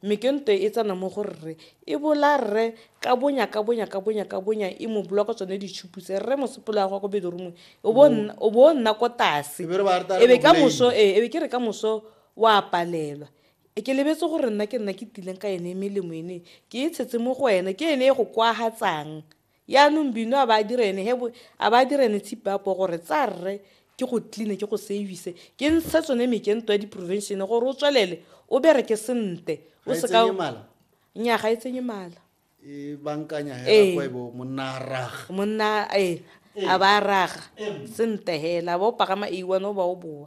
Mme ke ntwe e tsena mo go rre, e bola rre ka bonya, ka bonya, ka bonya, ka bonya, e mo block-a tsone ditšhupu tse. Rre mosupologo wa gwa ko bedroom-ong, o bo nna, o bo nna ko tase. Ebe re ba re tla re Ebe ka mo moso, blame. ee, ebe ke re ka moso wa palelwa. E ke lebetse gore nna ke nna ke tileng ka ene melemo ene e, ke e tshetse mo go ene. Ke ene e go kwagatsang. Yaanong Bino a ba a dire ene he bo, a ba a dire ene tshipi a poo gore, Tsa rre, ke go clean-e, ke go save-ise, ke ntshe tsone mekento ya di-prevention-e gore o tswelele o bereke sente. Ga e tsenye mala? Nnyaa, ga e tsenye mala. E bankanya hela Ee. kwa e bo monna a raga. monna e a ba a raga sente hela a ba o pagama a one o ba o boa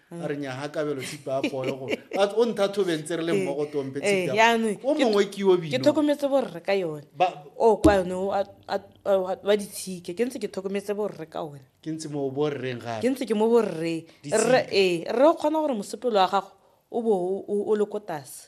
a re nyaga kabelo tshipa a poyo go o ntha thobeng tse re le mmogo tompe eh, eh, o mongwe ke yo bino ke tlhokometse borre ka yone o kwa yone wa ditshike ke ntse ke tlhokometse borre ka one ke ntse mo borreng ga ke ntse ke mo borre re ee rre o kgona gore mosepelo wa gago o bo o le ko tase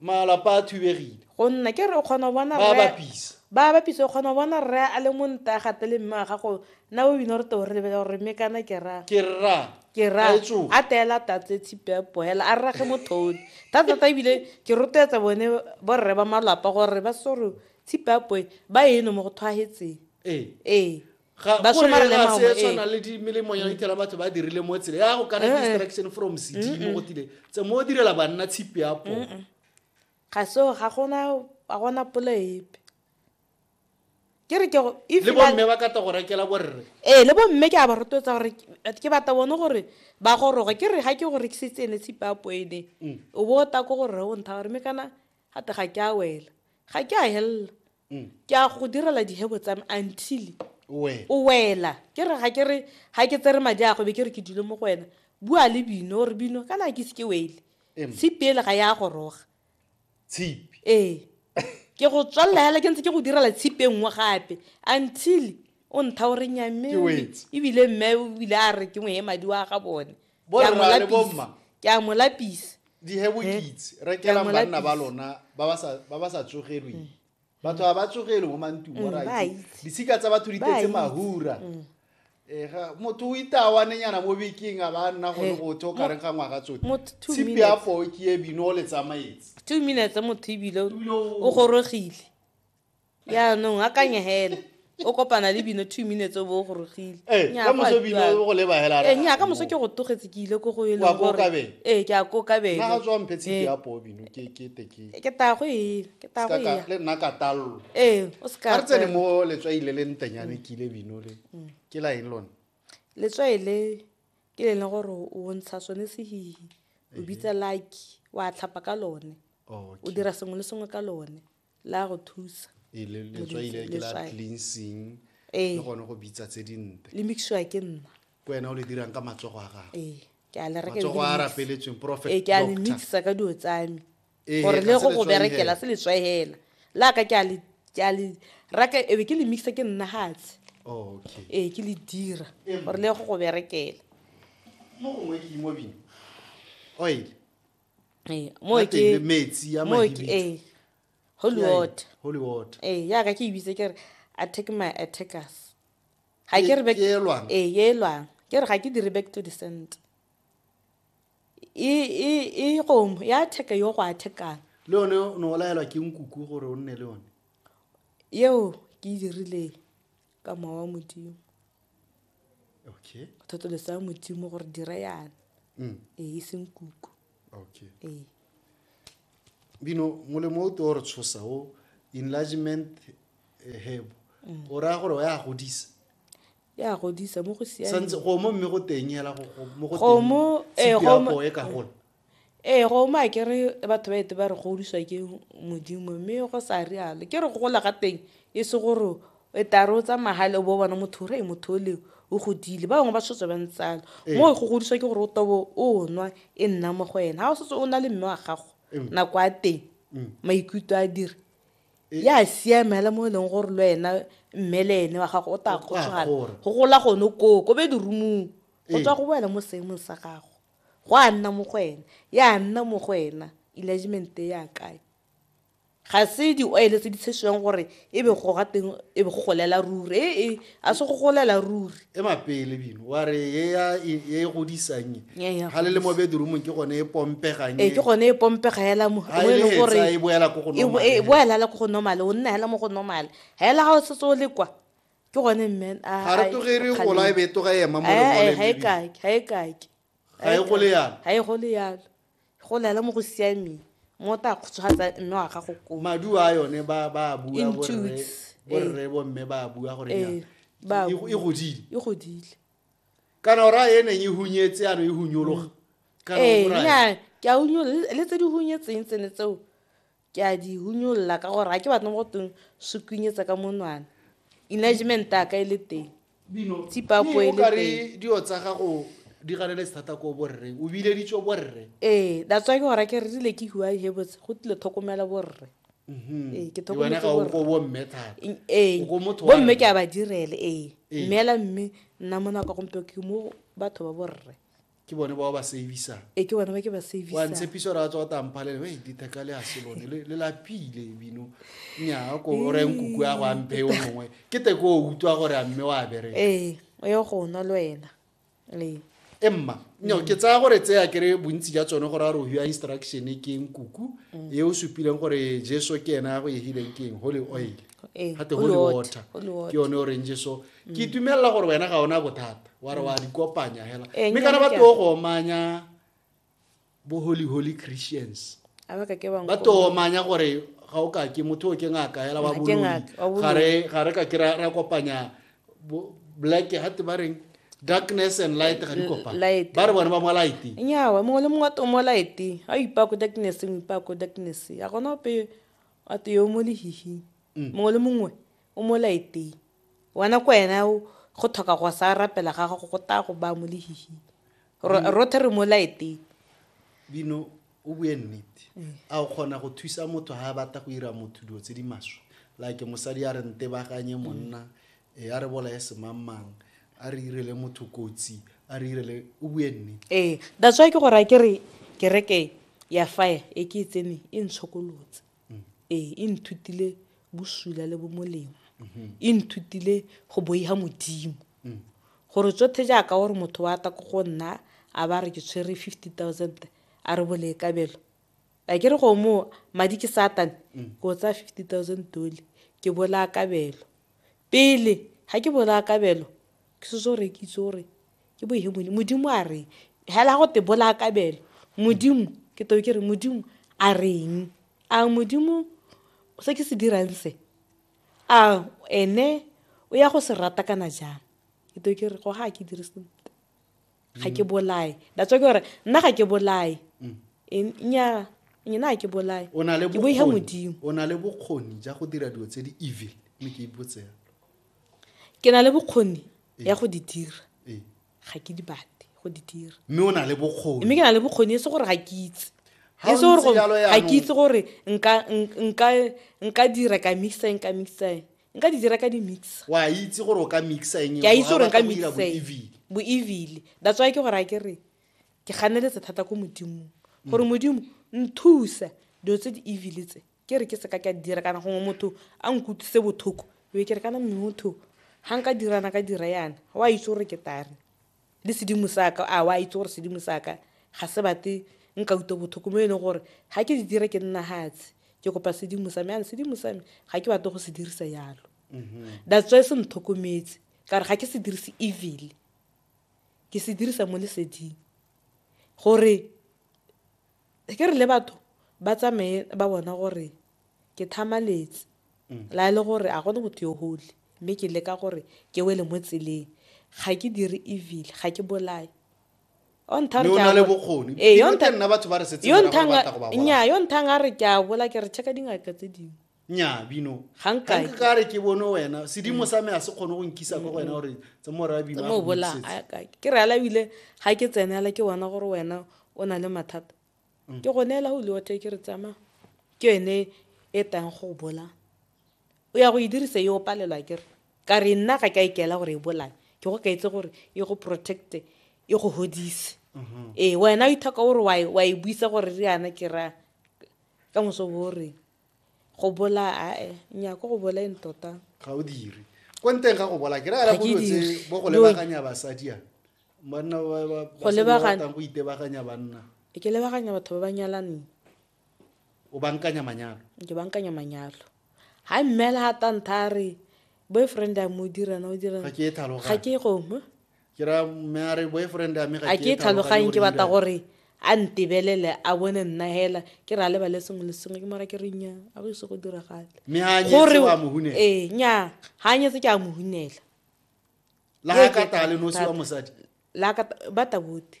Malapa a thubegile. Go nna ke re o kgona go bona rre. Ba bapisa. Ba bapisa o kgona go bona rre a le mo nta a gate le mme wa gago na o bina gore te o re lebela gore mme kana ke ra. Ke ra. Ke ra. A teela tatse tshipe ya poela a rrage mothone. Thata thata ebile ke rotloetsa bone borre ba malapa gore ba se gore tshipe ya poe ba eno mo go thwagetseng. Ee. Ee. Ga- ba gore somarela ga se maungo, e ee. tshwana le di- melemo ya itela batho ba dirile mo tsele ya go kana Eh, eh. distraction from cd mo go tile tse mo direla banna tshipi ya po ga seo ga gona ga gona polo epe ke re ke go- if le ba- bomme ba kata go rekela borre ee le bomme ke a ba rotloetsa gore ke- ke bata bone gore ba goroge ke re ga ke go rekisitse ene tshipapo ene o bo o ta ko gore o ntha gore me kana gate ga ke a wela ga ke a helela mm. ke a go direla dihebo tsa me until o wela ke re ga ke re ga ke tsere madi a go be ke re ke dule mo go wena bua le bino re bino kana ke se ke wele tshipi ele ga ya goroga tshipi ee ke go tswalela hela ke ntse ke go direla tshipi e nngwe gape until o ntha o re nyamme ebile mme o bile a re ke ngwe e madi wa ga bone Bo Ke a mo rra le lapisa. bomma. ke a mo lapisa dihe bokitse Eh, rekela ke a mo banna ba lapisa. lona ba ba sa- ba ba sa tsogelweng batho ga ba tsogelwe mo mantung Mm, ba orit itse. disika tsa batho di Ba tetse itse. mahura Mm. Eh, ga- motho o itawanenyana mo bekeng a ba nna gone Eh, go tho kareng ga ngwaga tsote mo two tshipi minutes. ya poo ke e bino o le tsamaetse two minutes motho ebile o gorogile yaanong a kanye hela o kopana le bino two minutes o bo o gorogile ee ka moso bino o go leba hela ee nya ka moso ke go togetse ke ile ko go e leng gore ee ke a ko ka bele na tswa mphe tshiki ya po bino ke ke te ke ke ta go e ke ta go ya le nna ka tallo ee o se ka re tsene mo le tswa ile le ntenyane ke ile bino le ke la eng lone le tswa ile ke le leng gore o ntsha sone se hi o bitsa lucky wa tlhapa ka lone o dira sengwe le sengwe ka lone la go thusa ee, letswaile ke la cleansing ee. le gone go bitsa tse dinte le mixiwa ke nna ke wena o le dirang ka matsogo a gago ee, ke a le rekematsogo a rapeletsweng prophet ee, ke a le mixa ka dilo tsame gore le go go berekela se letswae hela la ka ke a le ke a le raka ebe ke le mixa ke nna gatshe oh, ee ke le dira gore le go go berekela mo gongwe ke imobi oil ee mo ke le metsi ya mo ke ee holy water holy water ee ya ka ke e bitse ke re attack my attackers ga ke re back ee ye lwang ke re ga ke dire back to the center e e e gomo ya attack yo go attackang le yone o ne o laelwa ke nkuku gore o nne le yone yeo ke e dirileng ka mowa wa modimo okay go thotolesa ya modimo gore dire yana mm. ee e seng kuku okay ee bino molemo o te o re tshosa o enlargement eh, hebo mm. o raya gore o ya godisa ya godisa mo go siameng go mo mme go teng hela go mo go teng kgomo e ka gola Ee, go uma ke re batho ba ete ba re godiswa ke Modimo mme go sa rialo. Ke re go gola ga teng e se gore e tare o tsamaya gale o bo bona motho re motho o le o godile ba bangwe ba setse ba ntsalo mo go godiswa ke gore o tobo o nwa e nna mo go ena ga o setse o na le mme wa gago nako a teng maikutlo a dire ya siamela mo e leng gore le wena mme le ene wa gago o tla kgotsogala go gola gone koo ko be dirumong go tswa go boela mo seemong sa gago Gwa nna mo go ena. Ya nna mo go ena. Enlargement e ya kae? Ga se di-oil tse di tshesiwang gore e be go ga teng e be go golela ruri. Ee, ee, a se go golela ruri. E mapele bino. Wa re e ya e e godisang e. Ya, ya Ha le le mo godisa. bedroomong ke gone e pompegang Ee, e. ke gone e pompega hela mo Ha mo e e le leng gore hetsa, e boela ko go e bo- normal e hela. boela hela ko go normale o nna hela mo go normale hela ga o setse o le kwa ke gone mmen a- ga re a- toge re kgaleng. gola e be e toga ema mo Eh, eh, lengoleng ga e baby. kake ga e kake Ga e gole yalo. ga e gole yalo go lela mo go siameng mo o tla kgotsogatsa mme wa gago koo madu a yone ba ba a bua In borre toots, eh. borre bomme ba a bua gore Ee, nyana, ba a e- bua. e godile e godile kana o raya e neng e hunyetse ano e hunyologa kana ee o raya nya ke a unyo le le tse di hunyetseng tsene tseo Ke a di hunyolola ka gore ga ke batle mo go teng se kwinyetsa ka monwana. Enlargement ya ka e le teng. Tsipapo e le teng. Mme o ka re dio tsa gago di ganeletse thata ko borreng. O bileditswe borre. Ee, that's why ke go raya ke re rile ke huai he botse go tlile thokomela borre. Ee, ke Le wena thokometse ga o ko borre. bomme thata. Eng- Ee, O ko motho wa bomme rre. ke a ba direle ee. Ee. Mme hela mme nna mo nako ya gompieno ke mo batho ba borre. ke bone bao ba savisang e ke bone ba ke ba savisang wa ntshepiso ra tswa tang pale le di theka le hase lone le le la pile bino nya ko re nku kwa go ampe o mongwe ke te go utwa gore a mme wa bere eh o yo go no le wena le emma no ke tsaya gore tse ya kere bontsi ja tsone gore a re o hua instruction ke nkuku mm. e o supileng gore jesu ke ena go e hileng ke eng holy oil Ee, gate go holy water, lewater holy water. ke yone orange so ke itumelela gore wena ga ona bothata wa re wa di kopanya hela Ee, mme kana nnyane ba ke a- tlo go omanya bo holy holy christians a ba ka ke bang ba tlo omanya gore ga o ka ke motho o ke ngaka hela wa Ga ke boloi ngaka, wa boloi. ga re ga re ka ke ra ra kopanya bo- black gate ba reng darkness and light ga di kopana light. ba re bone ba mo light nyawa mongwe le mongwe wa tomo laete a o ipaya ko darknesseng o ipaya ko darkness a gona ope a te yo mo lehihing mm. mongwe le mongwe o mo laeteng wena ko wena go tlhoka go sa rapela ga gago go taya go baya mo lehihing mm. rothe re mo laeteng bino o bue nnete mm. a o kgona go thusa motho ga a batla go ira motho dilo tse di maswe like mosadi a re nte baganye monna e a re bolae semangmang a re irele motho kotsi a re irele o bue nne ee that's why ke go raya ke re kereke ya fire e ke e tseneng e ntshokolotse mm. ee e nthutile bosula le bomolemo mm-hmm. e nthutile go boiga modimo mm. gore tsotlhe jaaka gore motho wa ta ko go nna a ba re ke tshwere fifty thousand a re boleekabelo a ke re go mo madi ke satane ke o tsaya fifty thousand dolly ke bolaya kabelo pele ga ke bolaya kabelo ke setse o rekitse gore ke bo hemone modimo a reng hela go te bolaya kabelo modimo ke teo ke re modimo a reng a modimo se ke se dirang se a ene o ya go se rata kana jang ke teo ke re go ga ke dire sentle ga ke bolae that's why ke gore nna ga ke bolae mm. nnyaa nyena ga ke bolae ke boiga modimo o na le bokgoni ja go dira dilo tse di evil mme ke ipotsela ke na le bokgoni ee. ya go di dira ee. ga ke di bate go di dira mme o na le bokgoni mme ke na le bokgoni e se gore ga ke itse e se gore ga ke itse gore nka dira ka mixaeng ka mixaeng nka di dira ka di mixa wa itse gore o ka mixa eng ke a itse gore nka mixa bo evile that's why ke gore a ke re ke ganeletse thata ko modimong gore mm. modimo nthusa dilo tse di evile tse ke re ke seka ke a dira kana gongwe motho a nkutlwise bothoko be ke re kana motho ga nka dirana ka dira yana wa itse gore ke tare le sedimo sa ka a wa itse gore sedimo sa ka ga se bate nka utlwe botlhoko mo e leng gore ga ke di dire ke nna hatse ke kopa sedimo sa me ane sedimo sa me ga ke batle go se dirisa yalo mm-hmm. that's why se ntlhokometse ka gore ga ke se dirise evil ke se dirisa mo leseding gore Ke re le batho ba tsamaye ba bona gore ke thamaletse la e le gore a gone motho yo holy mme ke leka gore ke wele mo tseleng ga ke dire evil ga ke bolaye nnyaa yo nthang a re ke a bola ke re check-a dingaka tse dingwe nya bino ga nka ka re ke bone wena sedimo sa me a se kgone go nkisa kwa wena gore tse mo ra bino mo bola ke re ala bile ga ke tsenela ke bona gore wena o na le mathata mm. ke go neela go liwa ke re tsama ke yone e tang go bola o ya go e dirisa yo palelwa ke re ka re nna ga ka ikela gore e bolae ke go ka itse gore e go protecte e go hodise mm-hmm. ee wena o ithoka gore wa e buisa gore re yana ke ra ka moso bo reng go bola ae nya ko go boleng tota ga o dire ko nteng ga go bola ke rela go tse bo go lebaganya basadi a banna ba ba go lebaganya go itebaganya banna e ke lebaganya batho ba ba nyalaneng o bankanya manyalo ke bankanya manyalo ha mmela ha tantha re boyfriend a mo dira na o dira ga ke e thaloga ga ke e gongwe ke ra mme a re boyfriend a me ga a ke tlhaloganye ke batla gore a ntebelele a bone nna hela ke re a lebale sengwe le sengwe ke mara ke re nya a go ise go diragale gore ee nya ga a nyetse ke a mohunela la ka tale nosi wa mosadi la ka ba tabote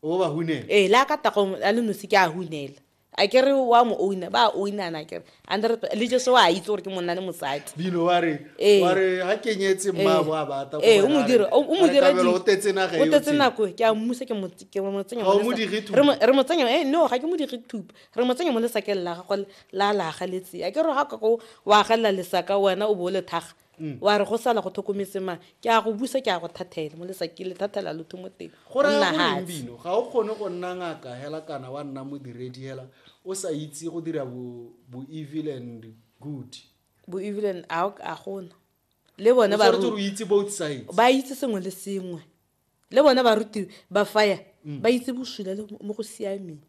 o ba hunela ee le a ka tagong a le nosi ke a hunela a ke re wa mo owina ba owinana kere hundred le jeso wa itse gore ke monna le mosadi bino wa re Ee. wa re ha kenyetse mmabo a bata ee o mo dira o mo dira di- o tetse naga o tetse nako ke a mmusa ke mo ke mo tsenya Ga o mo mo lesa- dire thupa? re mo- re mo tsenya eh no ga ke mo dire thupa re mo tsenya mo lesakeng la gagwe la la galetse a ke re ga ka ko wa galela lesaka wena o bo o le thaga mm. wa re go sala go tlhokometse mang ke a go busa ke a go thathela mo lesa ke le thathela lotho mo teng go nna hatsbino ga o kgone go nna ngaka hela kana wa nna modiredi hela o sa itse go dira bo evil and good bo evil and a gona le bone ba itse sengwe le sengwe le bona barutiwe ba faya mm. ba itse bosula le mo go siameng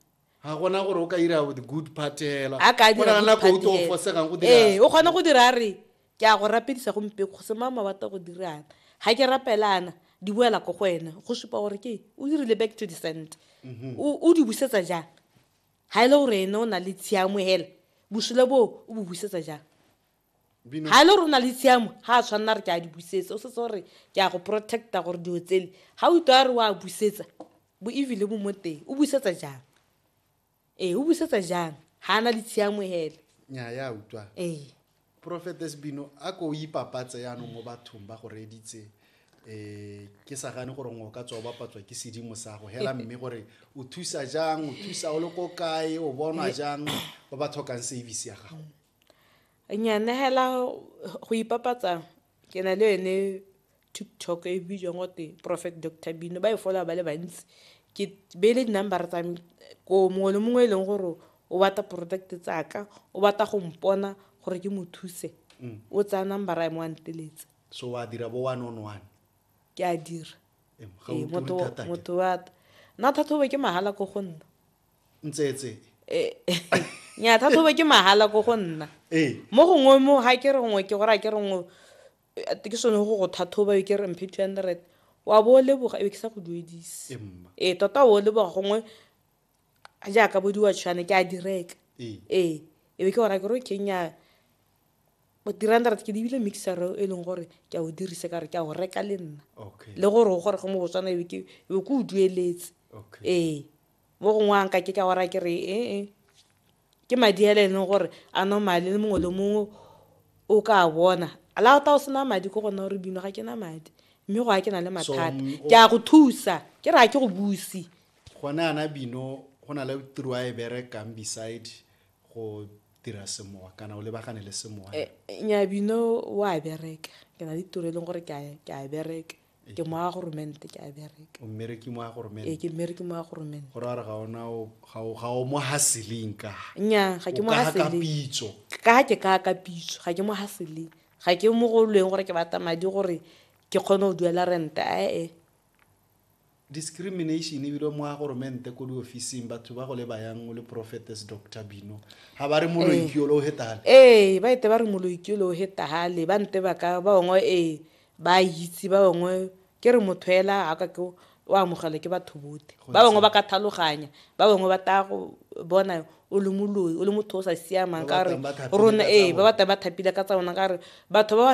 ga gona gore o ka ira the good part hela a ka dira nako o tlo fosegang go dira eh o kgona go dira re ke a go rapedisa go mpe go se mama wa go dirana ga ke rapelana di boela ko go wena go supa gore ke o dirile back to the cent mhm. o di busetsa jang ga e le gore ene o na le tshiamo hela bosula boo o bo busetsa jang ga e le rona le tshiamo ga a tshwanela re ke a di busetsa o setse gore ke a go protecta gore dilo tsele ga o itwa re o a busetsa bo evile bo mo teng o busetsa jang ee o busetsa jang ga a na le tshiamo hele nya ya utlwa ee profetes bino a ko o ipapatse yanong mo bathong ba go reeditse um ke sa gane gore ngwe o ka tswa o bapatswa ke sedimo sa go hela mme gore o thusa jang o thusa o le ko kae o bonwa jang ba ba tlhokang service ya gago Nya nehela go ipapatsa ke na le yone TikTok e bidiwang gote Prophet Doctor Bino ba e followa ba le bantsi ke beile di-number tsa me ko mongwe le mongwe e leng gore o batla product tsaka o batla go mpona gore ke mo thuse o tsaya number a mo a nteletse so wa dira bo one on one ke a dira Ee, ga o Ee, turi motho thata ke. motho wa nna thathobo ke mahala ko go nna ntsetse eh, nya thathobe ke mahala ko go nna ee. mo gongwe mo ga ke re gongwe ke gore a ke re ngwe eh, ke sone go go thathoba e ke re mphe two hundred wa bo o leboga ebe ke sa go duedise ee tota o leboga gongwe jaaka bo diwatshwane ke a direka ee ebe ke gora ke ro kenya three hundred ke dibile mixer e leng gore ke a o dirise ka re ke a o reka le nna le gore o gore go mo botswana ebe ke o dueletse ee mo gongwe a nka ke ka ora ke re ee ke madi a e leng gore a normale le mongwe le mongwe o ka a bona la o ta o sena madi ko gona gore bino ga ke na madi mme go a ke na le mathata mm, ke a go thusa ke re a ke go busi gone ana bino go na le tiro a e berekang beside go dira semowa kana o lebagane le semowa eh, eh, nya bino o a bereka ke na le tiro e leng gore ke a bereka ke moya goromente ke a bereka o mmereki mo ya ee goromente ke mmereke moya goromente go raya gore ga ona o- ga o- ga o mo haseling ka nya ga ke O mo kaga ka haseleng pitso ka ke ka ka pitso ga ke mo haseleng ga ke mo go lweng gore ke batla madi gore ke kgone go duela rente ae discrimination ebile mo ya goromente ko diofising batho ba go le bayang o le prophetess dr bino ga ba re moloikiolo o hetale ee ba ete ba re moloikiole o hetagale ba nte ba ka ba ongwe ee ba a itse ba bangwe ke re motho ela a ka ke o amogelwa ke batho bote ba bangwe ba ka thaloganya ba bangwe ba taya go bona o le moloi o le motho o sa siamang ka re rona ee ba batla ba thapile ka tsa bona ka re batho ba